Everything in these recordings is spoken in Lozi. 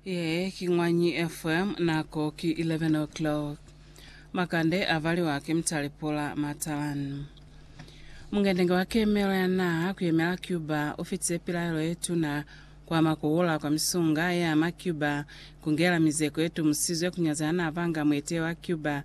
Ye ki Ñwanyi FM, nako ki 11 o'clock. Makande a valiwa ki Mutale Pula Matalan. Mungendenge wa kemelo ya naha ku yemela Cuba u fitize pilaelo ye tuna ku ama ku hula kwa misunga ye ama Cuba ku ngela mizeko ye tumusizwe ku nyaza ya n'a banga muetehi wa Cuba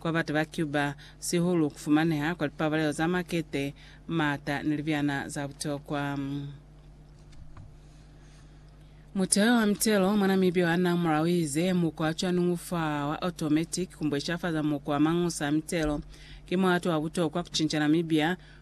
Kwa batu ba Cuba, sihulu ku fumaneha kwa lipabalelo za makete, maata, ni libyana za butokwa. Muteyo wa mitelo mwa Namibia wa na mulao ize mukwa wa cwaningu fa wa automatic ku mbweshafaza mukwa wa mangusa a mitelo. Ki muhato wa butokwa ku cinca Namibia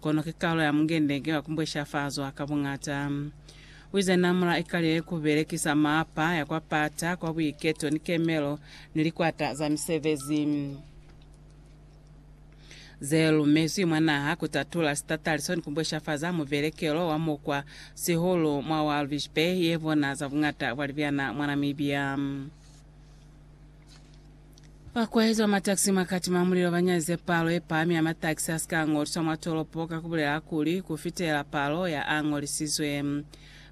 Kono ki kalo ya mungende nge wa kumbweshafazwa ka buñata. Wize namula ikalile ku belekisa mapa ya kwa pata kwa buiketo ni kemelo ni likwata za misebezi ze lumezwi mwa naha ku tatula sitataliso ni kumbweshafaza mubelekelo wa mukwa sihulu mwa Walvis Bay ye bona za buñata bwa libyana mwa Namibia. Fa kuezwa mataxi mwa kati mwa mulilo banyaze palo yepahami ya mataxi asika angoliswa mwa tolopo ka kubulela kuli kufitela palo ya angolisizwe.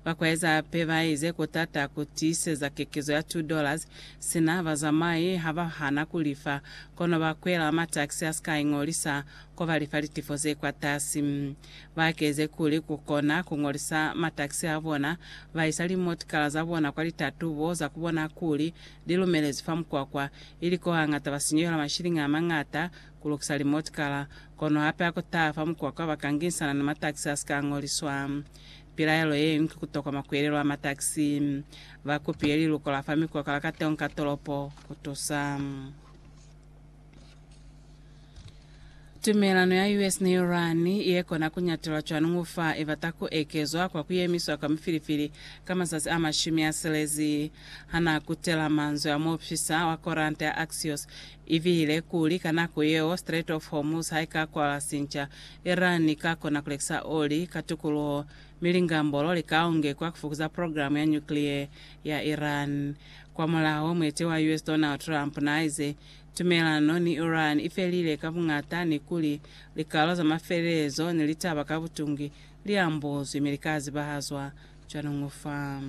Fa kueza hape baize kutata kutiiseza kekezo ya two dollars sina bazamai habahana kulifa, kono bakwela mataxi asika ingolisa kobalifa litifo zekwatasi. Ba keze kuli ku kona ku ngolisa mataxi a bona, ba isa limotikala za bona kwa litatubo za ku bona kuli li lumelezwi fa mukwakwa, ili ko hangata ba sinyuhelwa mashiliñi a mañata ku lukisa limotikala. Kono hape ha ku taha fa mukwakwa ba ka ngisana ni mataxi a si ka ngoliswa. Pilaelo ye ñwi ki ku tokoma ku elelwa mataxi. Ba kupile liluko la fa mikwakwa la kateho ni ka tolopo ku tusa. Tumelano ya US ni Iran ye kona ku nyatelwa cwani ngo fa i bata ku ekezwa kwa ku yemiswa kwa mifilifili ka mazazi a mashumi a silezi? Ha n'a kutela manzwi a muopisa wa koranta ya Axios, i bile kuli ka nako yeo Strait of Hormuz ha i ka kwalwa sinca, Iran i ka kona ku lekisa oli ka tukuluho, mi lingambolo li ka ongekwa ku fukuza program ya nuclear ya Iran. Kwamulaho, muetewa wa US Donald Trump n'a ize, Tumelano ni Iran ifelile ka buñata ni kuli likalo za mafelelezo ni litaba ka butungi li ambozwi mi lika zibahazwa cwañu fa.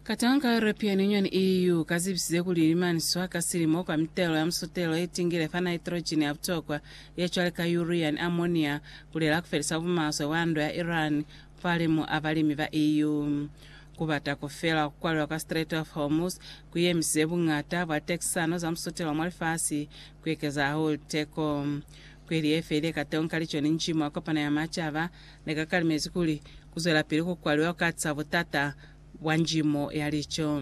Katanga ka European Union, EU, ka zibisize kuli limaniswa ka silimo kwa mitelo ya musotelo ye tingile fa nitrogen ya butokwa ye cwale ka urea ni ammonia kulela kufelisa bumaswe bwa ndwa ya Iran falimu a balimi ba EU. Ku bata ku fela ku kwalelwa ka Strait of Hormuz ku yemisize buñata bwa tekisano za musutelo mwa lifasi ku ekeza hahulu teko. Kweli ye felile kateñi ka Lichoni Nji mwa Kopano ya Macaba ne ka kalimezi kuli ku zwelapili ku kwaliwa ku katisa butata bwa njimo ya lico.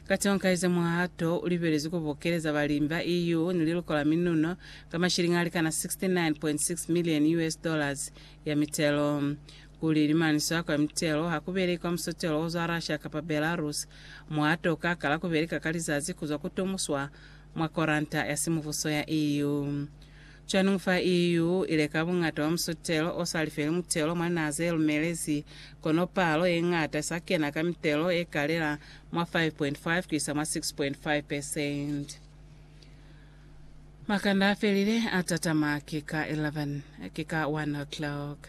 Kateñi ka ize muhato u libelezwi ku bokeleza balimi ba EU ni liluko la minuno ka mashilingi a likana 69.6 million US dollars ya mitelo. Ku lilimaniswa kwa mitelo ha ku belekwa musotelo o zwa Russia kapa Belarus mo a toka kala ku beleka ka lizazi ku zwa ku tomuswa mwa koranta ya simubuso ya EU. Cwaningu fa EU i leka buñata bwa musotelo o sa lifeli mutelo mwa naha ze lumelezi, kono palo ye ñata i sa kena ka mitelo ye kalela mwa 5.5 ku isa mwa 6.5 percent. Makanda a felile a tatama ki ka 11 ki ka 1 o'clock.